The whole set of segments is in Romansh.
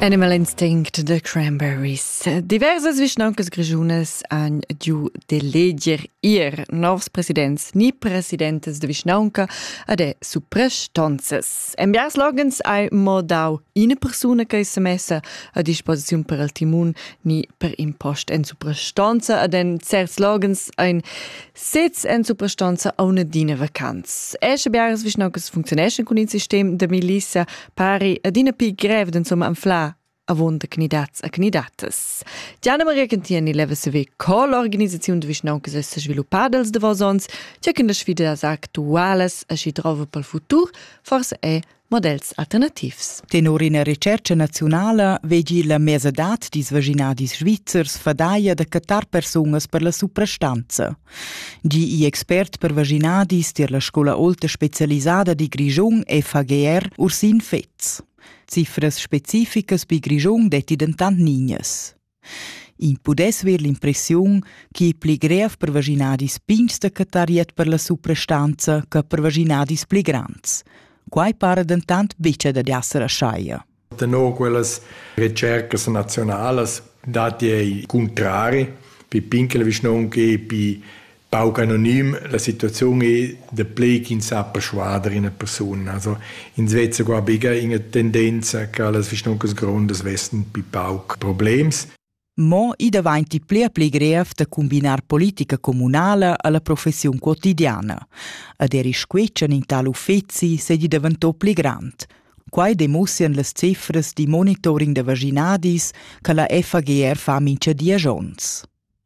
Animal Instinct de Cranberries. Diversas vischnauncas grischunas han giu d'eleger ir novs presidents ni presidentes de vischnaunca ad e suprastonzas. En biars loghens ei mo dau ina persuna che se messa a disposiziun per il timun ni per impost en suprastonza ad en certs loghens ein Sez en suprastanza auna d'ina vacanz. È sche biaras vischnancas funcziuneschan cun il sistem da milissa pari adina pi grev d'insomma anflar avon da candidats a candidatas. Diana Maria Cantieni leva saver co l'organisaziun de vischnancas è sviluppada els davos ons, tge che las sfidas actualas a si trova pel futur forse è models alternativs. Tenor ina retscherca naziunala vegi la mesadad dils vaginadis svizzers fadaglia da cattar persunas per la suprastanza. Gi i expert per vaginadis tier la scola olta specialisada di Grischun FAGR Ursin Fetz. Cifras specificas bi Grischun detti dentant nignas. Ins pudess ver l'impressiun ch'i ei pli grev per vaschinadis pigns da cattar iert per la suprastanza che per vaschinadis pli grands. Quai para dentant buca dad esser aschia. Tenor quellas ricercas nazionalas datti ei cuntrari pi pin che la vischnaunca e pi Pauc anonim, la situaziun ei daplei ch'ins sa perschuader ina persuna. Also, ins vezza qua buca ina tendenza che las vischnoncas grondas vessen pli pauc problems. Mo i davanti pli e pli grev da combinar politica communala alla professiun quotidiana. Ad eri squetschan in tal uffeci sedi daventò pli grand. Quai demussian las cifras di monitoring da vaginadis che la FAGR fa mincha dies onns.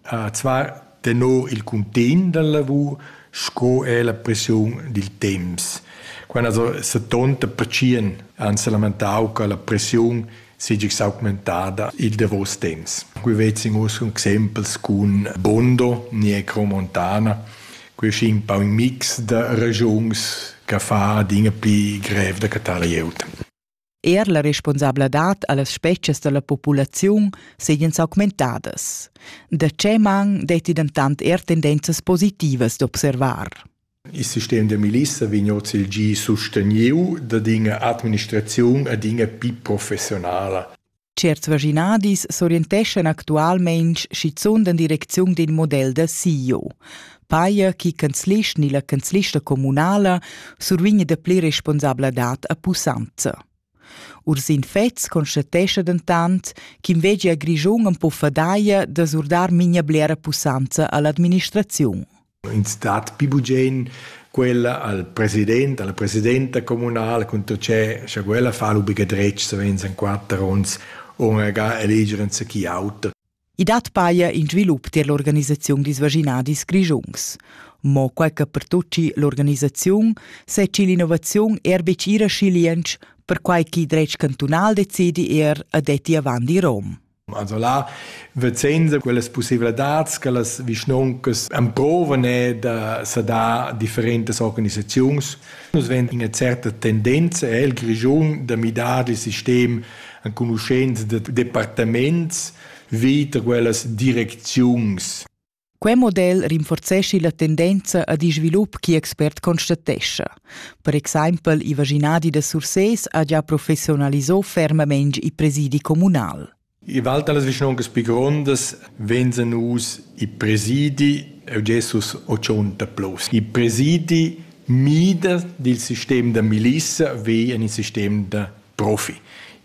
Qua tenor il cuntegn da lavur sco er la pressiun dil temps. Quei ha setonta pertschien ans lamentau che la pressiun seigi s'augmentada il davos temps. Qui vezin uss cun exempels cun Bondo, Negro, Montana. Quei è schi in pau in mix da ragiuns che fa adina pli grev da cattar glieud. Er la responsabladad a las spezias da la populaziun seigien s'augmentadas. Da tge man detti dentant er tendenzas positivas d'observar? Il sistem da milissa vegn oz il gi susteniu dad ina administraziun ad ina pi professionala. Certs vaschinadis s'orienteschan actualmein schizunt en direcziun d'in model da CEO. Paia chi canzlist ni la canzlista communala survign dapli responsabladad a pussanza. Ursin Fetz constatescha dentant ch'inveglia Grischun am po fadaia da surdar mincha blera pussanza all'administraziun. Ins dat pli bugen quella al president, alla presidenta communala cun tut che scha quella fa l'obliga dretg savens en quater onns ora ga eleger enzatgi auter. I dat paia in svilup tier l'organisaziun dils vaginadis grischuns. Mo quai che pertucci l'organisaziun seci l'innovaziun er betg ira schiliensch, perquai ch'il dretg cantunal decidi er a detti avant i Rom. Also là vezenza quellas pussevladads che las vischnoncas emprovan è da sa dar differentas organisaziuns. Nus vegn ina certa tendenza el Grischun da midar il sistem enconuschents de departaments vita quellas direcziuns. Quei model rinforzeschi la tendenza ad in svilup che expert constatescha. Per exempel i vaginadi da Sursés ha già professionalisò fermamein i presidi communal. I val talas vischnoncas pi grondas venzan us i presidi e Jesus ochonta plus. I presidi mida dil sistem da milissa ve en il sistem da profi.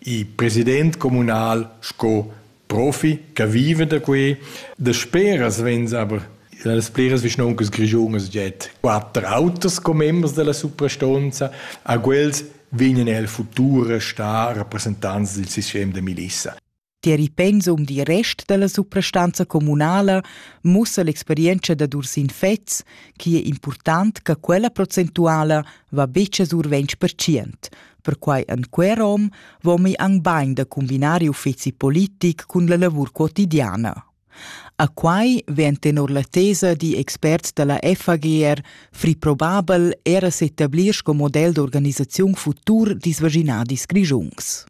I president comunal sco profi che viva da quei. Dasperas vegns aber las pliras vischnoncas grischunas jet quatter autos con members della suprastonza, a quels vegnan el futur a star rappresentants del sistem de milissa. Tier il pensum dil rest dalla suprastanza communala mussa l'experienza da Ursin Fetz che è important che quella procentuala va betg a survensch per cient. Perquai en quer rom vomi anc bain da cumbinar uffezi politic cun la lavur quotidiana. A quai vegn tenor la tesa di experts da la FAGR free probabel era s'ettablir sco model d'organisaziun futur disvaginadis grigiungs.